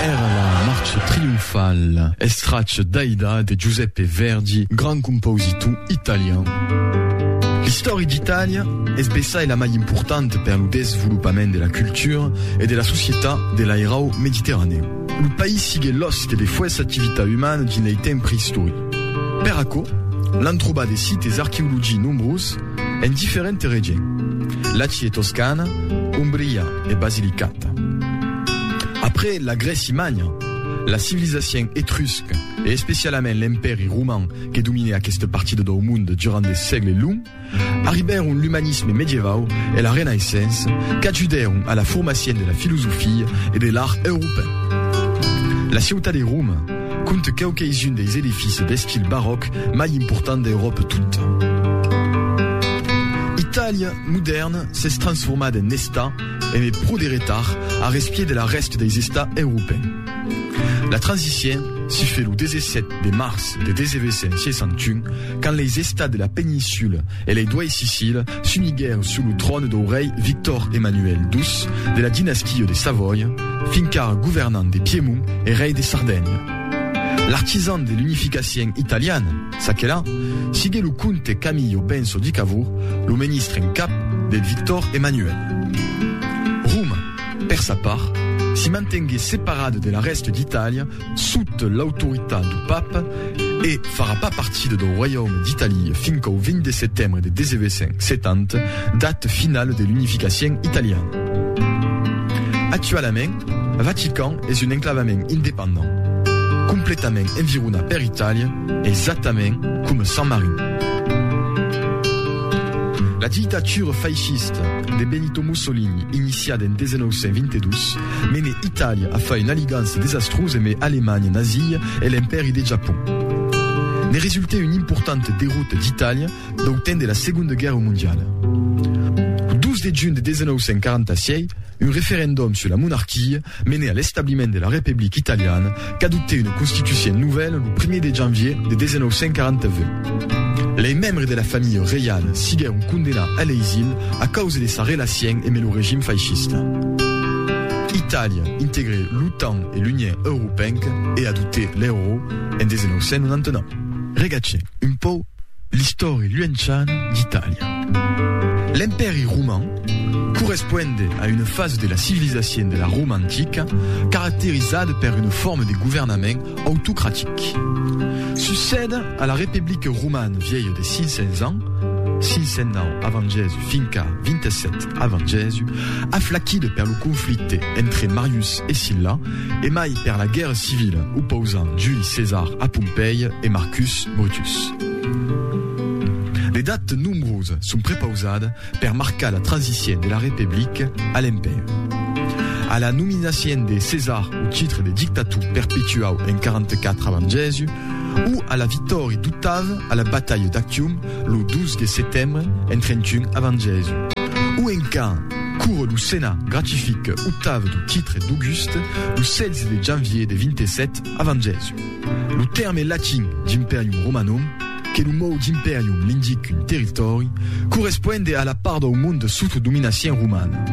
Èra la marcha trionfala. Estrach d'Aida de Giuseppe Verdi, grand compositor italian. L'istòria d'Itàlia es bessai la mai importanta per lo desvolopament de la cultura e de la societat de l'airau mediterranèu. Lo país siguèt l'òste de fuèssa activitat umana dins lei temps preistoric. Per aquò, l'an trobat de sites arqueologics nombroses, En diferente règien, Laci e Toscana, Umbria e Basilicata. Après la Grèci Manha, la civilizacien etrusc e especialament l'Empèri Roman que domine aquesta partida dau monde durant de sègle long, arribèron l'umanisme medievau e la Renaissença qu'ajudèron a la formacien de la filosofia e de l'art europèu. La ciutat de Roma, Compte que'u qu'eis un deis edifici d'estil baròc mai important d'Euròpa tota. Itàlia modèrna s'es transformada en Estat eme pro de retard a respier de la rèsta deis Estats europèn. La transicien si fait lo 17 de març de 1961 quand leis Estats de la Peninsula e lei doais Sicília S'uniguèr sus lo tròn dau rei Victor Emmanuel ii de la dinastia de Savòia, fin qu'ara governant de Piemont e rei de Sardenha. L'artisan de l'unificacien italiana, çaquelà, sigué lo comte Camillo Benso di Cavour, lo menistre en cap de Victor Emmanuel. Roma, per sa part, s'i mantengué separada de la rèsta d'Itàlia, sut l'autoritat du Papa e farà pas partida dau Roiaume d'Italia fin qu'au 20 de setembre de 1870, data finala de l'unificacion italiana. Actualament, Vatican es un enclavament independent, completament environat per Itàlia, exactament coma Sant Marin. La dictatura faishista de Benito Mussolini, iniciada en 1922, Mene Itàlia a fai un'aligança desastrusa eme Alemanha nazia e l'Empèri de Japon. Ne resultè una importanta derrota d'Itàlia dau temps de la Segonda Guèrra Mondiala. Lo 2 de junh de 1946, un referendom sus la monarquia mene a l'establiment de la Republica Italiana qu'adoptè una constitucion novèla lo primièr de janvier de 1949. Lei membres de la familha reiala siguèron condemnats a l'exil a causa de sa relacion emb lo regim faishista. Itàlia integrè l'OTAN e l'Union Europenca e adoptè l'euro en 1999. Regatge un pauc. L'istòri luenciana d'Itàlia. L'Empèri roman corresponde a una fasa de la civilizacion de la Roma antica caracterizada per una forma de governament autocratic. Succèda a la Republica romana vièlha de 500 ans, 509 avant Jèsus finca 27 avant Jèsus, aflaquida per lo conflicte entre Marius e Silla, e mai per la guèrra civila opausant Juli Cesar a Pompèi e Marcus Brutus. De datas nombrosas son prepausadas per marcar la transicion de la Republica a l'Empèri. A la nominacion de Cesar au titre de dictator perpetuau en 44 avant Jèsus, o a la vitòria d'Octave a la batalha d'Actium lo 12 de setembre en 31 avant Jèsus, o en quand Curo lo Senat gratifique Octave du titre d'Auguste lo 16 de janvier de 27 avant Jèsus. Lo tèrme latin d'imperium Romanum, que lo mot d'imperium l'indique un territòri, corresponde a la part dau monde sota dominacion romana.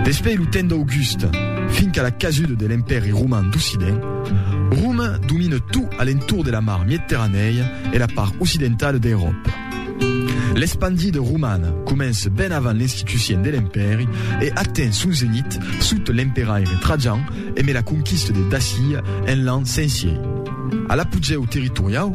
Despei lo temps d'Auguste, finca la casuda de l'Empèri roman d'Occident, Romain domine tot a l'entorn de la mar Miedterranèia e la part occidentala d'Euròpa. L'espandida romana comença ben avant l'institucien de l'empèri e aten son zenit sota l'emperaire Trajan e me la conquista de Dacía en l'an 100 sièi. A l'apogèu territoriau,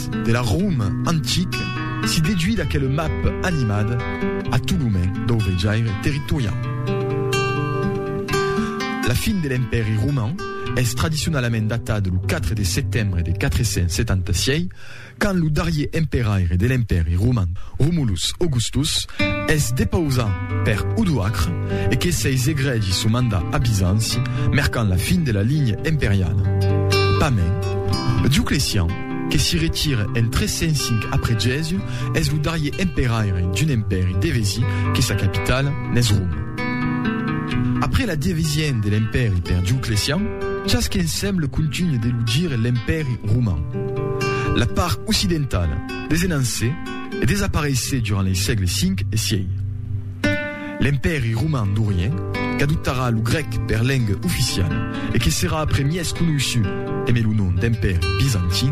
de la Rom antic si deduit d'aquel map animat a tot lo mai dau vejaire territoriau. La fin de l'Empèri Roman es tradicionalament datat lo 4 de setembre de 476, quand lo darrier emperaire de l'Empèri Roman, Romulus Augustus, es depausat per Odoacre e que seis egregi son mandat a Bizanci, mercant la fin de la linha imperiala. Pas mens, Dioclecian, que s'i retire en 305 après Jésus, es lo darrier emperaire d'un empèri devesi que sa capitala n'es Roma. Après la devesien de l'empèri per Dioclecian, chas que ensemble contunhe de lo dire l'empèri roman. La part occidentala desenance e desapareisse durant lei sègles 5 e 6. L'Empèri Roman d'Orient, qu'adoptarà lo grèc per lenga oficiala e que serà après mièg conoissut eme lo nom d'Empèri Bizantin,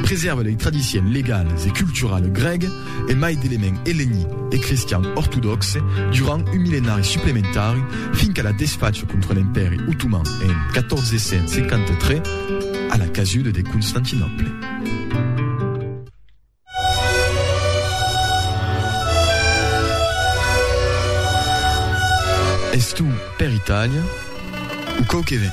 presèrva lei tradicions legalas e culturala grèga e mai d'elements ellenic e cristian ortodòxe durant un millenari suplementari fin qu'a la desfacha contra l'Empèri Otoman en 1453 a la casuda de Constantinòple. Es tu per Itàlia o quau que ven?